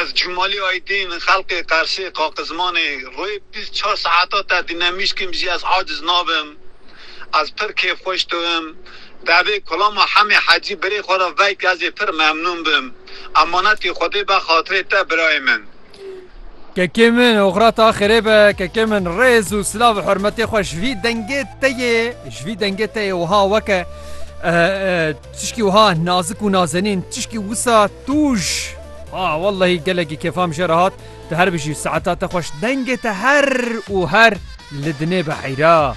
Ez Cumali Aydin xelkê Qersê Qaqizmanê rê bîst çar saeta te dînemişkim jî ez aciz nabim. Ez pir kêfxweş dibim. Devê Kulama Hemê Hecî birê xwe re veyke ez ê pir memnûn bim. Emanetê Xwedê be xatirê te birayê min. Kekê min oxira te xêrê be. Kekê min rêz û silav û hurmetê xwe ji vî dengê te yê ji vî dengê te yê wiha weke. Tişkî wiha nazik û nazenîn, tişkî wisa tûj. Ha wellehî gelekî kêfam jê re hat, tu her bijî, saeta te xweş, dengê te her û her li dinê be heyra.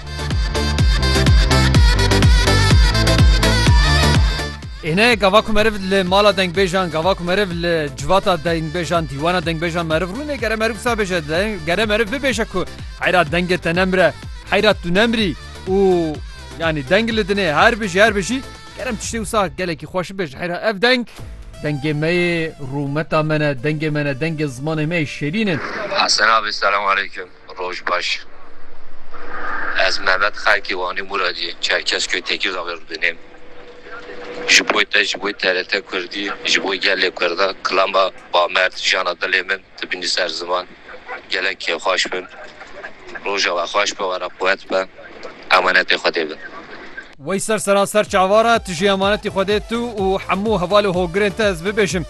Ê ne gava ku meriv li mala dengbêjan, gava ku meriv li civata dengbêjan, dîwana dengbêjan meriv rûne gere meriv wisa bêje, gere meriv bibêje ku heyra dengê te nemire, heyra tu nemirî û Yanî deng li dinê her bijî her bijî kerem tiştê wisa gelekî xweş bibêje heyra ev deng dengê me yê rûmeta me ne dengê me ne dengê zimanê me yê şêrîn in. Hesen abi selam aleyküm roj baş ez Mehmet xelkê Wanê Muradî Çerkezköyê Tekîrdağê re dinêm ji boy te ji boy TRT kurdî ji boy gelê kurdan kilama bamerd jana dilê min. Tu bînî ser ziman gelek xweş bin. Roja we xweş be were quwet be emanetê Xwedê bin. Wey ser seraser çavar e, tu jî emanetî Xwedê tu û hemû hevalê hogirên te ez bibêjim.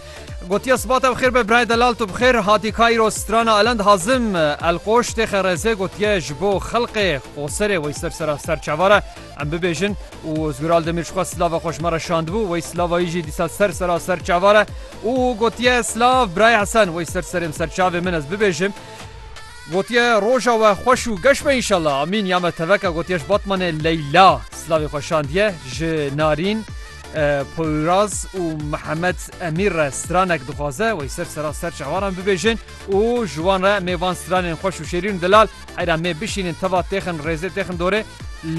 Gotiye siba te bi xêr be birayê delal tu bi xêr hatî Cairo strana Elend Hazim Elqoş têxe rezê gotiye ji bo xelqê Qoserê wey ser seraser çavar e Em bibêjin û Ozgur Aldemîr ji xwe slava xwe ji me re şandibû, wey slava yî jî dîsa ser sera ser çavan e û gotiye, Slav Birayê Hesen, wey ser serê min, ser çavê min ez bibêjim. Gotiye, Roja we xweş û geş be înşallah. Amîn ya me teveka gotiye ji Batmanê Leyla slavê xwe şandiye, ji Narîn, Poyraz û Mihemed Emîr re stranek dixwaze, wey ser sera ser çavan em bibêjin û ji wan re em ê van stranên xweş û şêrîn û delal Eyra mê bişînin teva têxin rêzê têxin dorê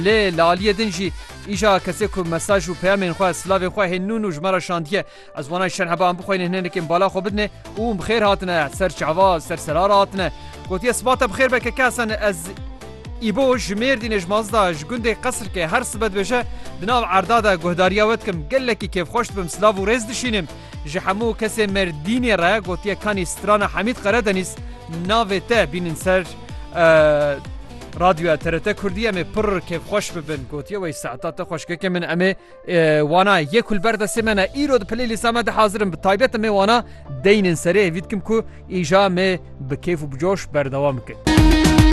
lê li aliyê din jî îşa kesê ku mesaj û peyamên xwe silavên xwe hê nû nû ji me re şandiye ez wanay şerh heba em bixweynin hinenekên bala xwe bidinê û hûn bi xêr hatine ser çava ser serara hatine gotiye sibate bi xêr be keke hesen ez îbo ji mêrdînê ji mazda ji gundê qesirkê her sibe dibêje di nav erda de guhdariya we dikim gelekî kêfxweş dibim silav û rêz dişînim Ji hemû kesên Mêrdînê re gotiye kanî strana Hemîd Qeredenîz navê te bînin ser Radyoya TRT Kurdî em ê pir kêfxweş bibin gotiye wey saeta te xweşkeke min em ê wana yek û li ber destê me ne îro di playlîsta me de hazir in bi taybet em ê wana deynên serê hêvî dikim ku îja me bi kêf û bi coş berdewam bikin.